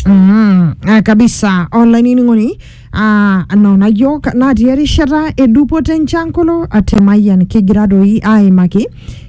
Mm, ah, kabisa olainining'oni ah, nona yiok natii erishata edupoto enchankolo atemayian kigira doi aimaki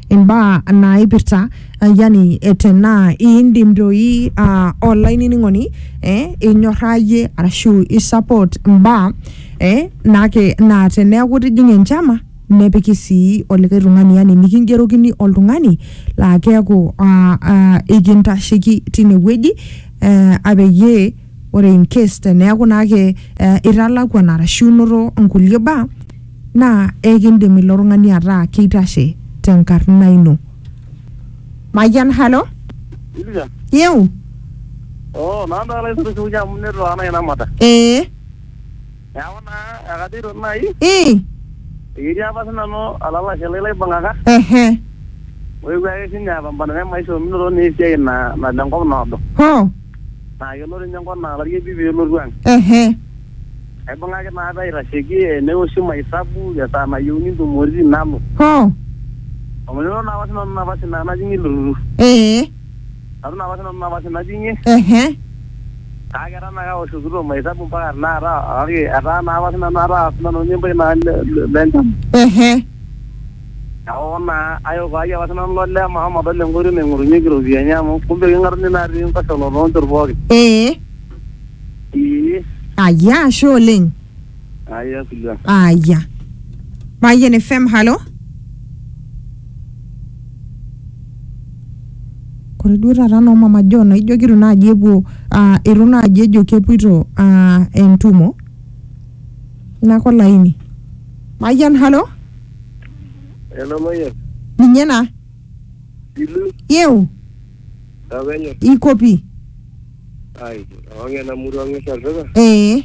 imbaa naipirta ah, yani eh, tenaa iindim doi ah, olainining'oni eh, inyorrayie arashu isupport imbaa eh, nake naa teneeku itijing'a enchama nepiki sii olikae tung'ani yani nikingerokini oltung'ani laa keeku aa aa ikintasheki tinewueji eh, apeyie ore in case teneeku naake eh, italakuan arashu inoto nkulie baa naa ekindim ilo tung'ani ataa keitashe tenkarna ino. Mayian halo, Ilika. yeu, Oh, nanda ala isurusurunya amu netu ana ina mata. ee. Neaku naa ekajoito nai ii eketii apa sinanu olalashe lai laibung'aka ehe oewuo ake sinye apambana te maisha ominoto naa esiai na- nalo enkop naado. ho Naa kelo ninye enkop naa olarieki pelotu ang'. ehe Aibung'aki naa apa aitasheki eneoshi maesabu esaa nayieuni ntumoritin nalo. ho Ominoto naa apa sinanu napa sinanu najing' ilo turrur. ee Aton apa sinanu napa sina tinye. Ehe. Kake etaa naa kaoshokito mahesabu mpaka tenakata kake etaa naa apa sinanu ataa sinanu ninye empuya naa le- le- lencham. Ehe. Neeku naa ayok ai apa sinanu ilo lee mashomo adol enkoitoi naing'orunyeki iropiyiani amu kumbe king'atuni naa atii enkoshola too nchot pookin. Ee. Ee. Aya ashe oleng. Aya Sylvia. Aya. Mayian FM, halo. Ore duo taata noo mama John naa ijo keitu naaji epuo aa eitu naaji ejo kepuoito aa entumo nake olaini. Mayian halo Hello Mayian. ninye ena Ilu yeu tapenyo. iko pi Ai, awang ena murua ng'esa olduka. Ee.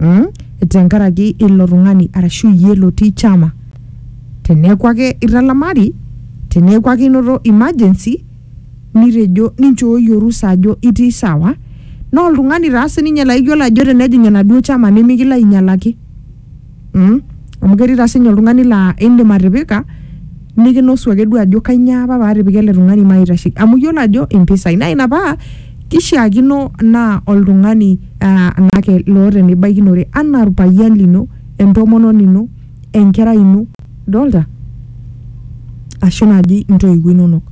mm? tenkaraki ilo tung'ani arashu iyie lotii chama teneeku ake italamari teneeku ake inoto emergency nitejo ninchooyie orusa ajo itii sawa naa oltung'ani taa sininye laiyiolo ajo tenejing enaduo chama nimikilo ainyalaki mm? Amu ketii taa sinye oltung'ani laa indim atipika nikinosu ake duo ajo kainyoo apa paatipika ele tung'ani maitasheki amu iyiolo ajo impisai naa ina paa kishiakino naa oltung'ani uh naake loota enibaikinore anaa orpayian lino entomononi ino enkerai ino idolta ashu naaji intoiwuo inonok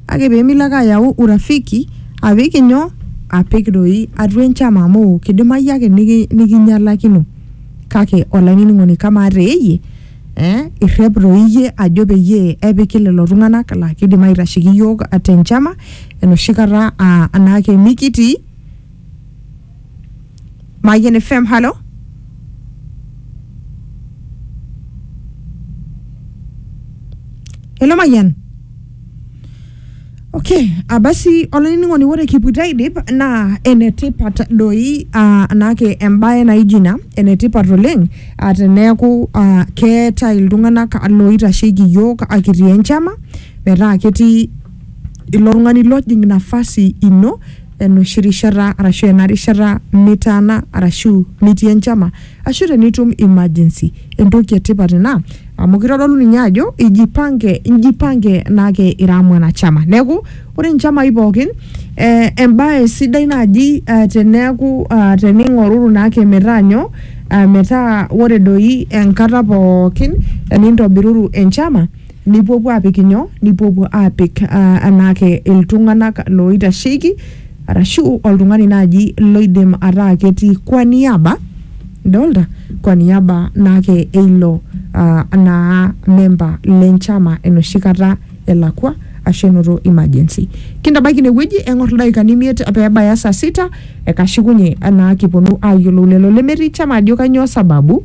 kake pemilo ake ayau urafiki apik inyoo apik doi atua enchama amu kidimai ake niki nikinyialakino. Kake olainining'oni kamaa te iyie eh, irrep toi iyie ajo peyie epiki lelo tung'anak laa kidim aitasheki iyiook te nchama enoshi kata aa anaake mikitii? Mayian FM, halo? Hello Mayian? Okay, ah, basi olainining'oni ore kipuita aidip naa enetipat doi ah, anaake embae naijo ina enetipat oleng ah, teneeku ah, keetae iltung'anak looitasheki iyiook ah, kitii enchama metaa ketii ilo tung'ani lojing nafasi ino enoshi rishata arashu ena rishata nitaana arashu nitii enchama ashu tenitum emergency entoki etipat ina amu kitodolu ninye ajo ijipange ijipange nake ira mwanachama neeku ore nchamai pookin eh, embae sidai naaji eh, teneeku ah, tening'oruru naake metaa nyoo ah, metaa ore doi enkata pookin enintobiruru enchama nipuopuo apik inyoo nipuopuo apik ah, anaake iltung'anak loitasheki arashu oltung'ani naaji loidim ataa ketii kwa niaba Idolta? Kwa niaba naake eilo uh, naa memba le nchama enoshi kata elakwa ashu enoto emergency. Kintabaiki ine wueji eng'or ildaikani imiet peebaya saa sita ekashukunye naa kiponu aayiolou lelo lemetii chama ajo kanyoo sababu.